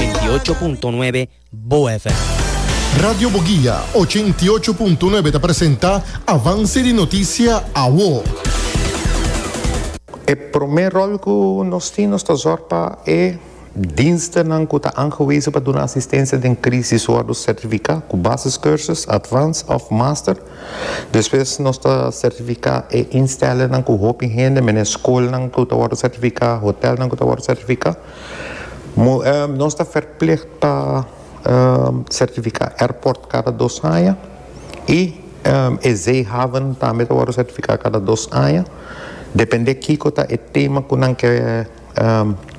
ochenta y ocho punto nuebe Bo FM. Radio Boguia ochenta y ocho punto nuebe ta presenta Avance di Noticia Awo. E promé ròl ku nos tin nos ta zòrg pa e dienstenan ku ta aangewezen pa duna asistensia den krisis wòrdu sertifiká ku basiskursus, advance òf master. Despues nos ta sertifiká e instellingnan ku hopi hende, menen skolnan ku ta wòrdu sertifiká, hotèlnan ku ta wòrdu sertifiká. Nos ta ferplig pa sertifica airport cada dos aña y e zeehaven tambe ta wordo sertifica cada dos aña depende kico ta e tema cu nan ke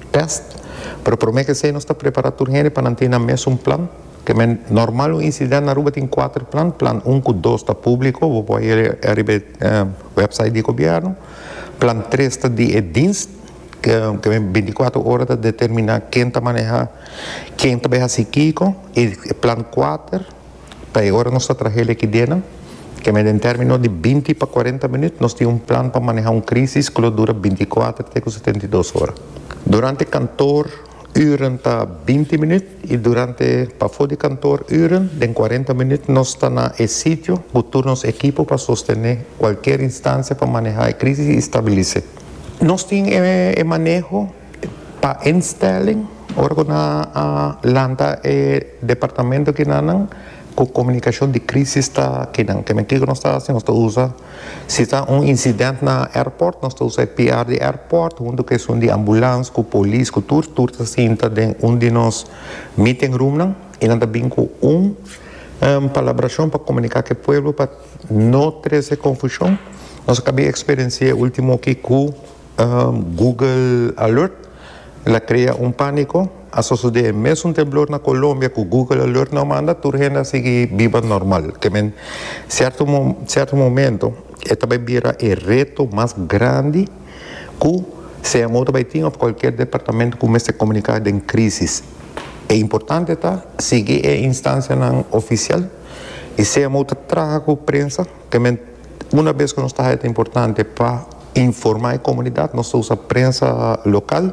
test pero prome ke esey nos ta prepara tur hende pa nan tin nan mes un plan normal un incident na Aruba tin cuater plan, plan un cu dos ta publico bo por hayo ariba e website di gobierno plan tres ta di e dienst. Kende binticuatro ora ta determina ken ta maneha, ken ta bai hasi kiko y e plan kuater pa e ora nos ta trahe el aki dena. Kende den termino di binti pa kuarenta minuut nos tin un plan pa maneha un crisis ku lo dura binticuater te ku setenta i dos ora. Durante kantoor uren ta binti minuut y durante pafo di kantoor uren den kuarenta minuut nos ta na e sitio ku tur nos ekipo pa sostene kualkier instancia pa maneha e crisis y stabilise. Nos tin e maneho pa instelling ora cu nan a lanta e departamento kinanan cu comunicacion di crisis ta kinan. Kimen kico nos ta haci? Nos ta usa, si ta un incidente na airport, nos ta usa e PR di airport hunto cu esun di ambulance, cu polis, cu tur, tur ta sinta den un di nos meeting roomnan y nan ta bin cu un palabracion pa comunica cu e pueblo pa. No trece confusion. Nos a cabia experiencia ultimo aki cu Google Alert la crea un panico. A sosode e mesun temblor na Colombia cu Google Alert no a manda, tur hende a sigui biba normal. Kemen cierto cierto momento e ta bay bira e reto mas grandi cu CMO ta bay tin of cualkier departamento cu mester comunica den crisis. E importante ta sigui e instancianan oficial. I sea mou ta traha ku prensa, te men una bes ku nos ta haya ta importante pa informa e komunidat, nos ta usa prensa lokal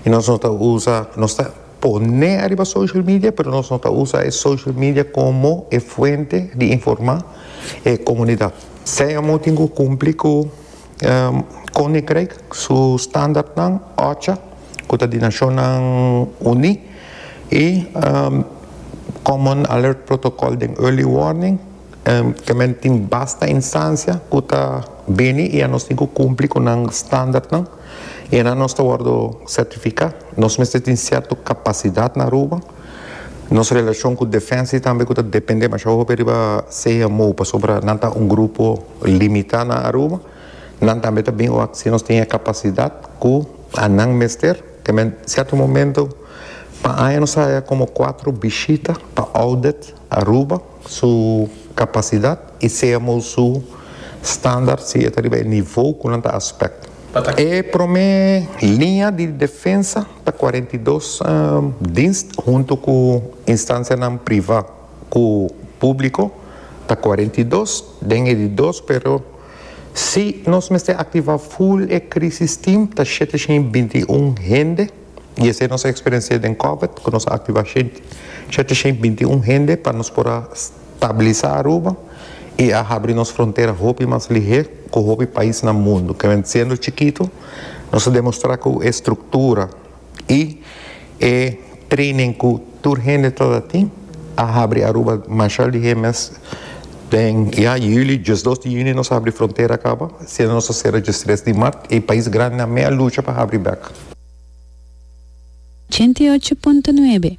i nos no ta usa, nos ta pone ariba social media pero nos no ta usa e social media komo e fuente di informa e komunidat. Sea mou tin ku kumpli ku Koninkrijk su standaardnan, oca ku ta di Nashonnan Uní, i Common Alert Protocol den Early Warning, ta men tin basta instansia ku ta bini i anos tin ku kumpli ku nan standaardnan i anan nos ta wòrdu sertifiká. Nos mester tin sierto kapasidat na Aruba. Nos relashon ku Defensie tambe ku ta dependé masha hopi riba CMO pasobra nan ta un grupo. Limitá na Aruba. Nan tambe ta bin wak si nos tin e kapasidat ku nan mester. Te men sierto momento pa aña nos a haña komo kuater bishita pa audit Aruba su kapasidat i semo su standaard si e ta riba e nivo ku nan ta aspek. E promé liña di defensa ta kuarenta i dos dienst huntu ku instansianan privá. ku públiko ta kuarenta i dos den e di dos pero si nos mester aktivá ful e krísis tim ta shete shin i binti i un hende i esei nos a eksperiensi'é den kòbèt ku nos a aktivá shete shin i binti i un hende pa nos por a stabilisá Aruba i a habri nos frontera hopi mas lihé ku hopi pais na mundu, kende siendo chikitu nos a demostrá ku e struktura. Y e training cu tur hende ta ta tin a habri Aruba mashal di e mes den ya juli, diesdos di juni nos a habri frontera caba, siendo nos a cera diestres di mart y pais grandinan me a lucha pa habri bek. Ochenta y ocho punto nuebe.